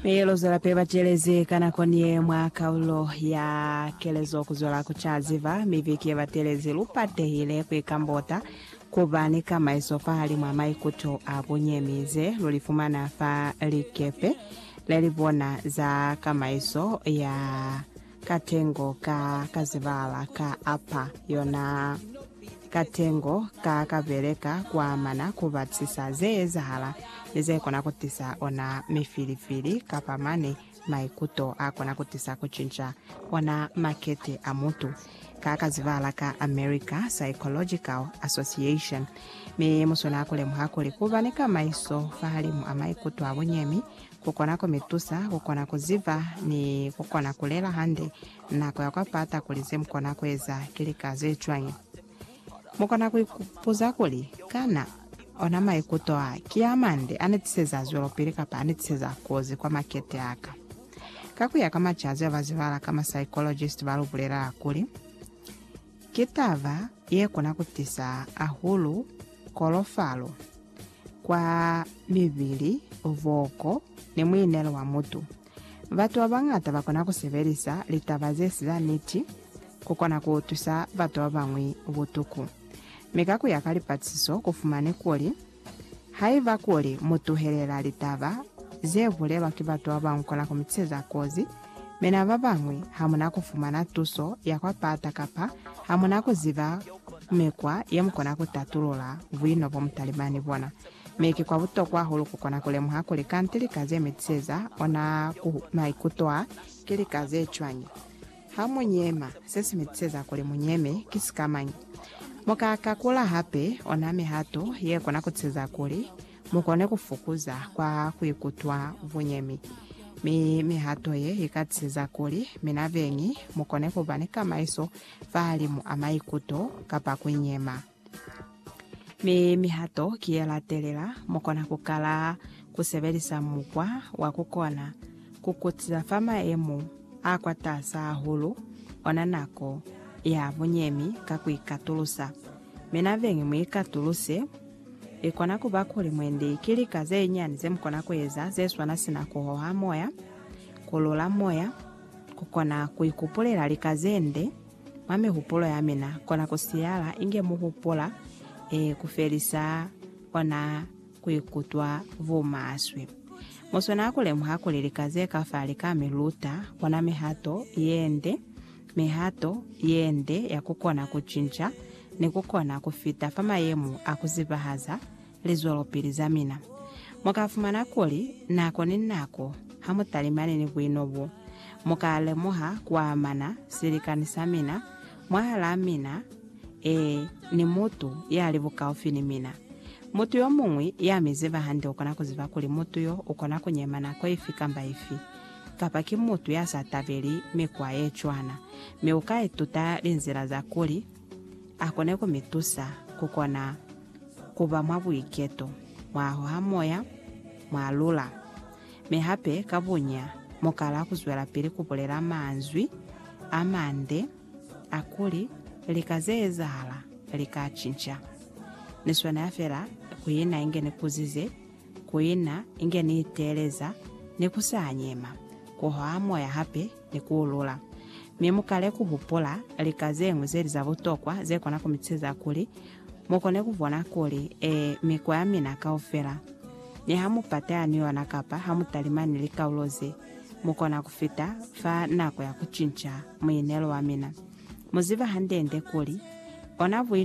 Mi luzwela pili bachelezi ka nako ni ye mwa kaulo ya kelezo kuzwela kuca ziba mi viki yebatelezi lu patehile kuikambota kuba ni kamaiso fahalimwa maikuto a bunyemi ze lu li fumana fa likepe lelibona za kamaiso ya katengo ka kazibala ka apa yona katengo ka kabeleka kuamana kubatisisa zeezahala ni zekona kutisa ona mifilifili kapa mane maikuto akona kutisa kucinca ona makete a mutu ka kazibala ka America Psychological Association mi musona kulemuha kuli kuba ni kamaiso fahalimu a maikuto a bunyemi ku kona ku mi tusa ku kona ku ziba ni ku kona ku lela hande nako ya kwa pata kuli ze mu kona ku eza ki lika ze cwañi. Mu kona ku ipuza kuli, Kana ona maikuto a ki a mande a ni tiseza zwelopili kapa a ni tiseza kozi kwa makete a ka? Ka ku ya ka macazi a ba zibala ka masaikologist ba lu bulelela kuli, Ki taba ye kona ku tisa ahulu kolofalo kwa mibili, boko, ni muinelo wa mutu. Batu ba bañata ba kona ku sebelisa litaba ze si za niti ku kona ku tusa batu ba bañwi butuku. Mi ka ku ya ka lipatisiso ku fumani kuli Haiba kuli mu tuhelela litaba ze bulelwa ki batu ba ba nkona ku mi tiseza kozi, mi na ba bañwi ha mu na ku fumana tuso ya kwa pata kapa ha mu na ku ziba mikwa ye mu kona ku tatulula buino bo mu talimani bona, mi ki kwa butokwa hahulu ku kona ku lemuha kuli kanti lika ze mi tiseza ona ku maikuto a ki lika ze cwañi. Ha mu nyema, se si mi tiseza kuli mu nyeme ki sikamañi? Mu ka kakula hape ona mihato ye kona ku tiseza kuli mu kone ku fukuza kwa ku ikutwa bunyemi. Mi mihato ye i ka tiseza kuli mina beñi mu kone ku ba ni kamaiso fahalimu a maikuto kapa ku nyema. Mi mihato ki ye latelela, mu kona ku kala ku sebelisa mukwa wa ku kona ku kutisa fa maemo a kwataasa hahulu ona nako ya bunyemi ka ku ikatulusa. Mi nabeñi mu ikatuluse. I kona ku ba kuli mwendi ki lika ze nyani ze mu kona ku eza ze swana sina ku hoha moya, ku lula moya, ku kona ku ikupulela lika ze nde, Mwa mihupulo ya mina, kona ku siyala inge mu hupula eh, ku felisa ona ku ikutwa bumaswe. Mu swanela ku lemuha kuli lika ze ka fa li ka mi luta ona mihato ye nde, mihato ye nde ya ku kona ku cinca ni ku kona ku fita fa mayemo a ku zibahaza lizwelopili za mina. Mu ka fumana kuli nako ni nako ha mu talimani ni buino bo, mu ka lemuha ku amana silikani sa mina mwahalaa mina, ee, ni mutu ya li bukaufi ni mina. Mutu yo muñwi ya mi ziba hande u kona ku ziba kuli mutu yo u kona ku nyema nako ifi kamba ifi, kapa ki mutu ya sa tabeli mikwa ye cwana, mi u ka ituta linzila za kuli, A kone ku mi tusa ku kona ku ba mwa buiketo, mwa hoha moya, mwa lula. Mi hape, ka bunya, mu kala ku zwelapili ku bulela manzwi a mande a kuli, Lika ze ezahala li ka cinca. Ni swanela fela ku ina inge ni kuzize, ku ina inge ni iteeleza, ni ku sa nyema, ku hoha moya hape, ni ku ulula. Mi mu kale ku hupula lika ze ñwi ze li za butokwa ze kona ku mi ceza kuli mu kone ku bona kuli, ee, mikwa ya mina kaufela, ni ha mu pateha ni yona kapa ha mu talima ni likaulo ze, mu kona ku fita fa nako ya ku cinca muinelo wa mina. Mu ziba hande-nde kuli, ona buino